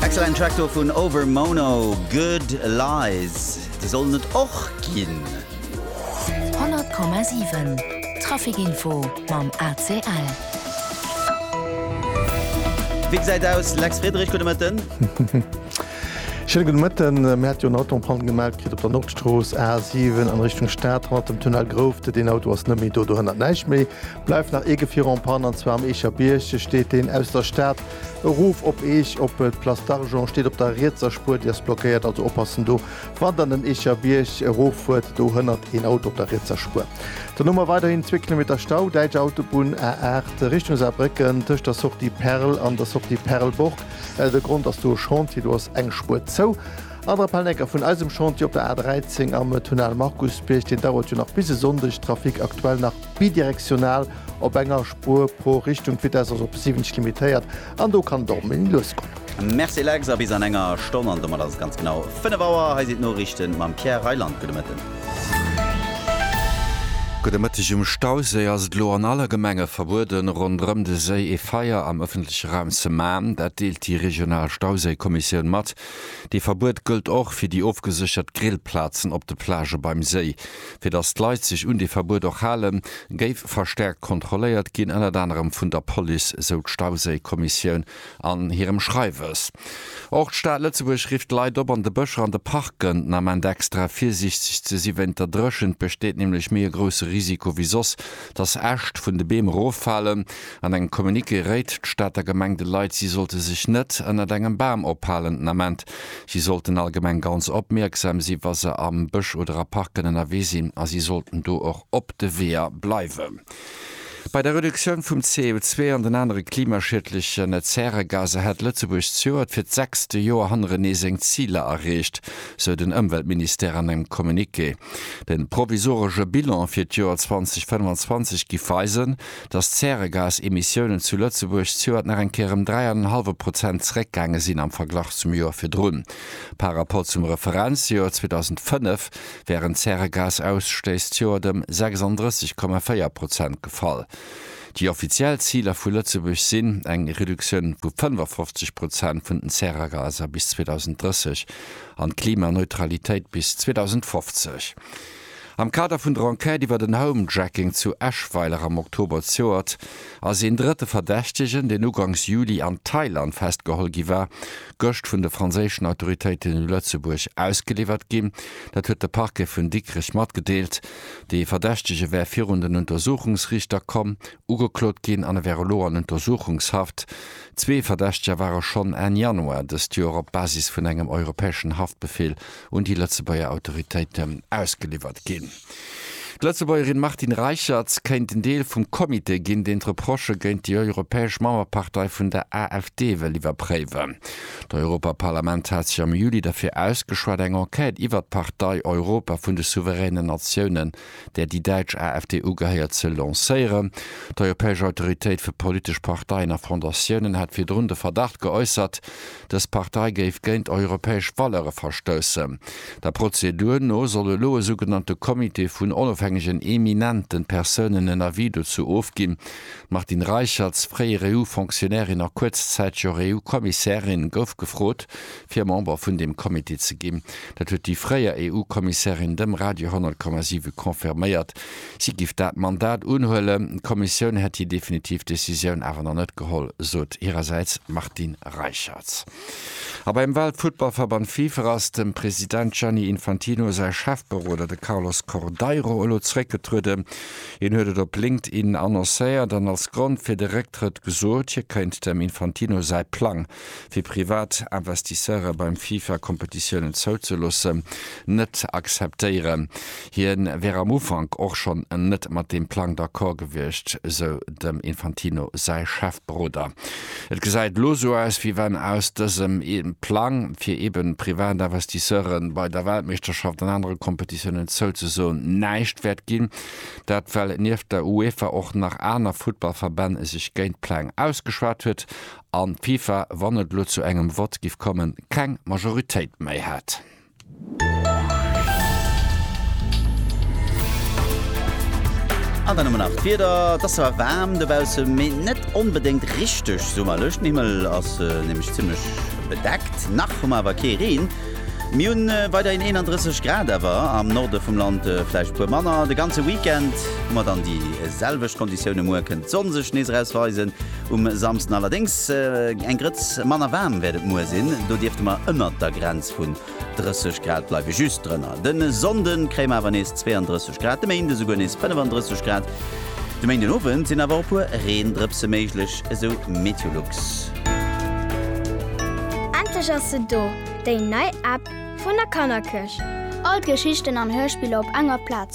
Excellent Track do vun Over Mono, Good Lies. Déi sollen et och ginn. 100,7 Traficinfo mam ACL. Wéi gesäit aus, Lex Friedrich? Gudde Mëtten. Schéine gudde Mëtten. Mir hätte jo en Auto en Panne gemellt kritt op der Nordstrooss A7 an Richtung Stad. Hannert dem Tunnel Groufte. Deen Auto ass net méi do. Dohënnert näischt méi. Bleift nach ee Gefier en panne, an zwar am Eecher Bierg steet deen aus der Stad erof op Eech op d'Place d'Argent, steet op der rietser Spuer, déi ass blockéiert, also oppassen do wann der den Eecher Bierg erof fuert, do hënnert een Auto op der rietser Spuer. Dann hu mer weiderhin zwee Kilometer Stau, däitsch Autobunn A8 Richtung Saarbrécken tëscht der Sortie Perl an der Sortie Perlburg, de Grond ass do e Chantier, do ass eng Spuer zou. An Rappelnecker vun eisem Chantier op der A13 am Tunnel Markusbierg, deen dauert jo nach bis e Sonndeg, Trafic aktuell nach Bidirektional, op enger Spuer pro Richtung, d'Vitesse ass op 70 limitéiert an do kann et och méi lues goen. Merci Lex, a bis an enger Stonn, an domat ass et ganz genau 5 Auer. Hei sinn d'Noriichten mam Pierre Reyland. Gudde Mëtten. Gudde Mëtteg. Um Stauséi ass et elo an alle Gemenge verbueden, ronderëm de Séi ee Feier am ëffentleche Raum ze man. Dat deelt déi regional Stauséikommissioun mat. Dee Verbuet gëllt och fir déi ofgeséchert Grillplazen op de Plagë beim Séi. Fir datt d'Leit sech un dee Verbuet och halen, géif verstäerkt kontrolléiert ginn, ënnert anerem vun der Police, sou d'Stauséikommissioun an hirem Schreiwes. Och d'Stad Lëtzebuerg rifft d'Leit op, an de Bëscher an de Parken den Ament extra virsiichteg ze si. Wéint der Dréchent besteet nämlech méi e grousse Risiko wéi soss, datt Äscht vun de Beem eroffalen. An engem Communiqué réit d'Stater Gemeng de Leit, si sollte sech net ënnert engem Bam ophalen den Ament. Si sollten allgemeng ganz opmierksam si wa se am Bësch oder a Parken ënnerwee sinn a si sollten do och op de Weeër bleiwen. Bei der Reduktioun vum CO2 an den anere klimaschiedlechen Zäregaser hätt Lëtzebuerg d'Joert fir d'sechste Joer hannerenee seng Ziler erreecht, sou den Ëmweltministère an engem Communiqué. De provisoresche Bilan fir d'Joer 2025 giff weisen, dass d'Zäregasemissiounen zu Lëtzebuerg zejoert nach eng Kéier ëm dräi an en hallwe Prozent zeréckgaange sinn am Verglach zum Joer virdrun. Par Rapport zum Referenzjoer 2005 wären d'Zäregasausstëiss zejoert ëm 36,4 Prozent gefall. Déi offiziell Ziler vu Lëtzebuerg sinn eng Reduktioun vu 55 Prozent vun den Zäragaser bis 2030 an d'Klimaneutralitéit bis 2050. Am Kader vun der Enquête iwwer den Homejacking zu Eschweiler am Oktober d'Joert ass een drëtte Verdächtegen, deen ugangs Juli an Thailand festgeholl gi war, gëscht vun de franséischen Autoritéiten u Lëtzebuerg ausgeliwwert ginn. Dat huet de Parquet vun Dikrech matgedeelt. Dee Verdächtege wär virun den Untersuchungsriichter komm, ugeklot ginn an e wär elo an Untersuchungshaft. Zwee Verdächteger ware schonn Enn Januar dëst Joer op Basis vun engem europäeschen Haftbefeel un déi Lëtzebuerger Autoritéiten ausgeliwwert ginn. D'Lëtzebuergerin Martine Reicherts kéint en Deel vum Comité ginn, deen d'Reprochë géint déi europäesch Mauerpartei vun der AfD wëll iwwerpréiwen. D'Europaparlament hat sech am Juli derfir ausgeschwat, eng Enquête iwwert d'Partei Europa vun de souveränen Natiounen, där déi däitsch AfD ugehéiert, ze lancéieren. D'Europäesch Autoritéit fir politesch Parteien a Fondatiounen hat virdrun de Verdacht geäussert, Dës Partei géif géint europäesch Valeure verstoussen. Der Prozedur no soll elo e sougenannte Comité vun onofhängegen eminente Persounen en Avis dozou ofginn. D'Martine Reicherts, fréier EU-Fonctionnairin a kuerzzäiteg och EU-Kommissärin, gouf gefrot, fir Member vun deem Comité ze ginn. Dat huet déi fréier EU-Kommissärin dem Radio 100,7 confirméiert. Si giff dat Mandat unhuelen. D'Kommissioun hätt hir definitiv Decisioun awer nach net geholl, sot hirersäits d'Martine Reicherts. A beim Weltfuttballverband FIFA ass dem President Gianni Infantino säi Chefberoder, de Carlos Cordeiro, elo zeréckgetrueden. Hien huet et op LinkedIn annoncéiert an als Grond fir de Récktrëtt gesot, hie kéint dem Infantino säi Plang fir privat Investisseure beim FIFA Kompetitiounen zouzeloossen, net akzeptéieren. Hien wär am Ufank och schonn net mat deem Plang d'accord gewiescht, sou dem Infantino säi Chefberoder. Et gesäit elo sou aus, wéi wann aus dësem Plang, fir eben privat Investisseure bei der Weltmeeschterschaft an anere Kompetitiounen zouzesoen, näischt wäert ginn. Dat well nieft der UEFA och nach aner Futtballverbänn sech géint d'Pläng ausgeschwat huet an d'FIFA, wann et elo zu engem Vott giff kommen, keng Majoritéit méi hätt. An dann hu mer nach d'Wieder. Et ass zwar waarm dobaussen, mee net onbedéngt richteg summerlech. Den Himmel ass nämlech zimmlech bedeckt. Nach hu mer awer kee Reen. Mir hunn weiderhin 31 Grad, awer am Norde vum Land vläicht e puer manner. De ganze Weekend hu mer dann déi selwecht Konditioune. Muer kënnt d'Sonn sech nees eraus weisen. Um Samsden allerdéngs eng Grëtz manner waarm wäert et muer sinn, do dierfte mer ënnert der Grenz vun 30 Grad bleiwen, just drënner. De Sonnde kréie mer awer nees 32 Grad, de Méinde souguer nees 35 Grad. De Méinden Owend sinn awer och e puer Reendrëpse méiglech, esou Meteolux. Endlech ass se do, déi nei App vun der Kannerkëch! All d'Geschichten an Hörspiller op enger Plaz.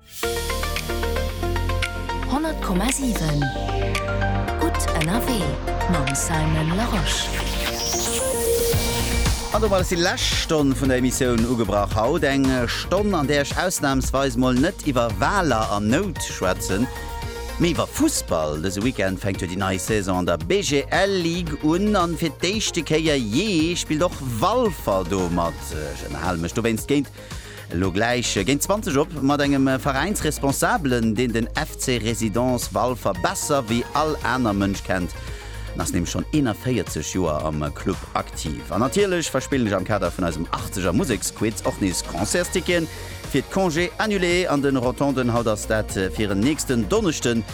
100,7 gutt ënnerwee mam Simon Larosche. An domat ass déi lescht Stonn vun der Emissioun ugebrach haut. Eng Stonn, an där ech ausnamsweis mol net iwwer Waler an Nout schwätzen, mee iwwer Fussball. Dëse Weekend fänkt jo déi nei Saison an der BGL Ligue un, an fir d'éischte Kéier jee spillt och Walfer do mat. Ech ënnerhale mech dowéinst géint Elo gläich géint 20 op mat engem Veräinsresponsabelen, deen den FC Résidence Walfer besser wéi all aner Mënsch kennt. En ass nämlech schonn 41 Joer am Club aktiv. An natierlech verspillen ech am Kader vun eisem Achtzeger Museksquiz och nees Concertsticketen fir d'Congés annulés an de Rotonden. Haut ass dat fir en nächsten Donneschden.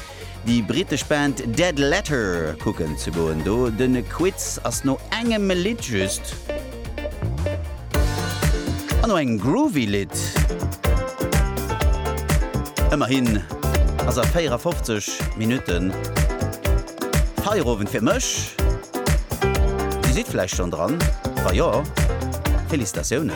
déi brittesch Band Dead Letter kucken ze goen. Do den Quiz ass no engem Lidd just an no engem groovy Lidd. Ëmmerhin ass a 54 Minutten Feierowend fir mech. Dir sidd vläicht schonn dran, wa jo, Felicitatiounen.